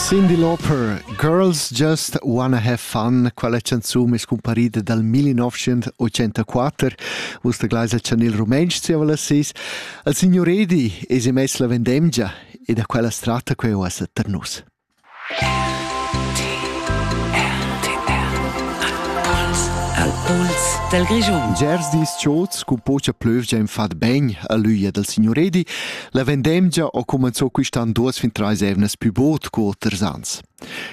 Cyndi Lauper, Girls Just Wanna Have Fun, quella canzun es cumparida dal 1984, vus da Gleis al chanel rumentsch zieva las sis. Al signor Edi es emess la vendemgia e da quella strata queu as tar nus. Al puls del Grischun. Gers dis chots cu pocha plövgia in fat ben a l'üia dal signor Edi, La vendemgia ho cumanzò quist'an duos fin trais eivnas pü bod co oters ans.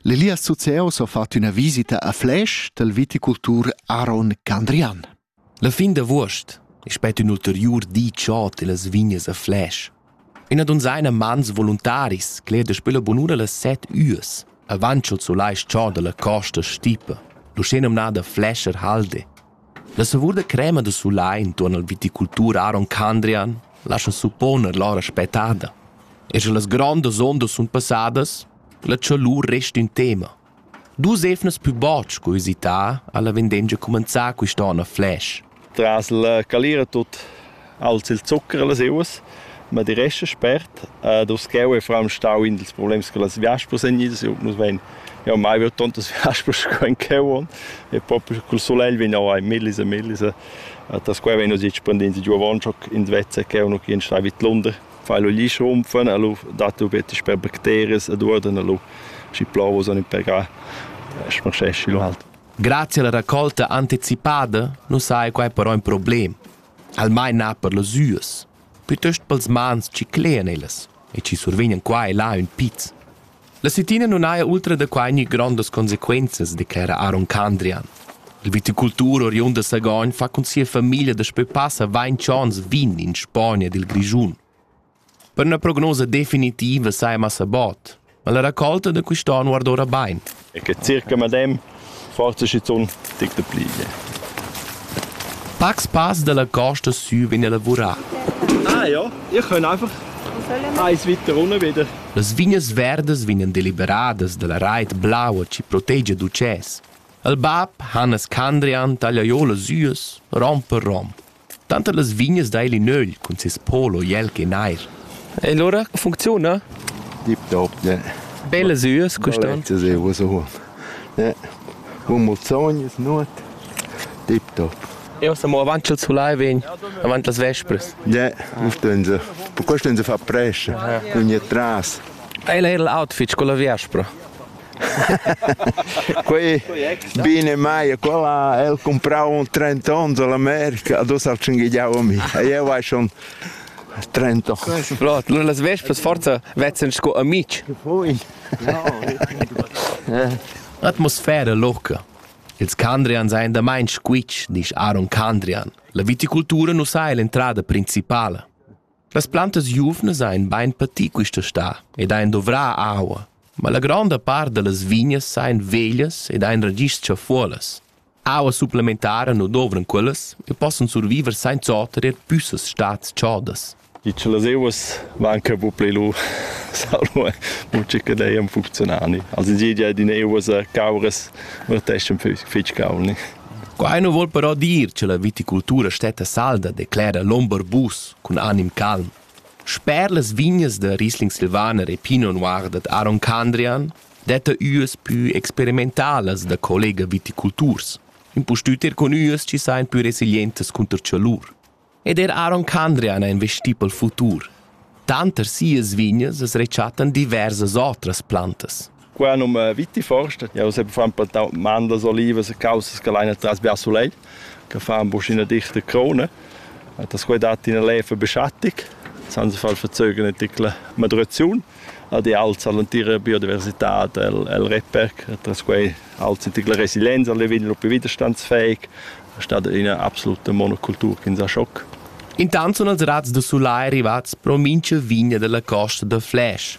L'Elias Zuceo s'ho fat üna visita a Flash dal viticultur Aaron Candrian. La fin d'avuost è spet ün ulteriur di chod illas vignas a Flash. Üna donzaina mans voluntaris cler daspö la bunura las set üas, avancho zu l'ais chod alla costa stipa, l'usché nomnada Flasher Halde, La savur da crema da sulai intuorn al viticultur Aron Candrian lascha supponer l'aura spettada. E sche las grondas ondas sun passadas, la chalur resta ün tema. Dus evnas pü bod sco üsità ha la vendengia cumanzà quist'on a Flash. Tras la calira tut Als il zuccher e las euas, ma di resta spert. Ed uscheu e fram stau in dils problems che las viaspas ein idas. Eu nus vein jau mai veu tontas viaspas sco in cheu on e propi col solegl vegn jau ein millis e millis e das quai vegn uns expandind giu avon schoc ins vezza che nu chien stai vid Lunder fai lu gli schrumpfen a lu dat du bitte per bacteries ed uorden a lu schi plovos on per ga smarschesci lu halt Grazie alla raccolta anticipada nu sai quai però in problem. almain na per las üas, piuttost pels mans chi clean ellas e chi survegnan qua e là ün piz. La Sittina nun haja ultra da quai gnü grondas consequenzas, declera Aaron Candrian. Il viticultur oriund da Sagogn fa cun sia famiglia daspö passa vainch ons vin in Spogna ed il Grischun. Per üna prognosa definitiva saja massa bod, ma la raccolta da quist'on guarda ora bain. E che circa madem, forse schizunt tic da pliglia. Pacs pass dalla costa sü vegn a lavurar. Ah ja, ich kann einfach eins weiter runter wieder. Las vignas verdas vegnan deliberadas dalla reit blaua chi protegia d'ucès. Il bab Hannes Candrian taglia jo las üas, rom per rom. Tanter las vignas dail in ögl cun ses polo jel che nair. E lura funcziuna? Dip doop, ne. Belle süas quist'an. Das ist so hoch. Ne. Humulzogn ist not. Dip doop. Io siamo avanti al sulai vegn, avanti las vespres. Ja, stehen sie. Per questo stehen sie fa presce, con je tras. Ei era l'outfit con la vespra. quei bine mai quella el comprau un 30 ons all'America a dus al cinghiau a mi e io vai schon 30 ans. Lot, las vespas forza vezzan sco amici. Poi. Atmosfera loca. Ils Candrian seien da mein squitsch, disch Aaron Candrian. La viticultura nu sai l'entrada principala. Las plantas giuvnas ein bein pati quista sta ed ein dovrà aua, ma la gronda part dallas vignas ein veglias ed ein ragischs chafuolas. Aua supplementara nu dovran quellas e possan surviver senza oter er püssas stats chodas. I che las euas van che bu pli lu salvo mucce che dei am funzionali. Also die die in euas cauras verteschen fitch caulni. Quai nu voul però dir cha la viticultura stetta salda, declera l'ombarbus cun anim calm. Sper las vignas da Riesling Silvaner e Pinot Noir dad Aron Candrian detta üas pü experimentalas da collega viticulturs, impustüt er cun üas chi sajan pü resilientas cunter chalur. Ed er Aaron Candrian è investì pel futur. Tanter sias vignas as rechattan diversas otras plantas. Qua num Vitiforst, ja se fan per mandas, olivas e causas che leina tras via sulei, che fan boschina dichte krone. Das quai dat in lefe beschattig, san se far verzögen in tickle Madrezun. ad e alza l'entira biodiversitad el, el Reperc, atras quei alza la resilienza, le vegn propi widerstandsfähig, statt ina absoluta monokultur che sa schoc. Intant sun els razs da sulai rivats pro mincha vigna della costa da Fläsch.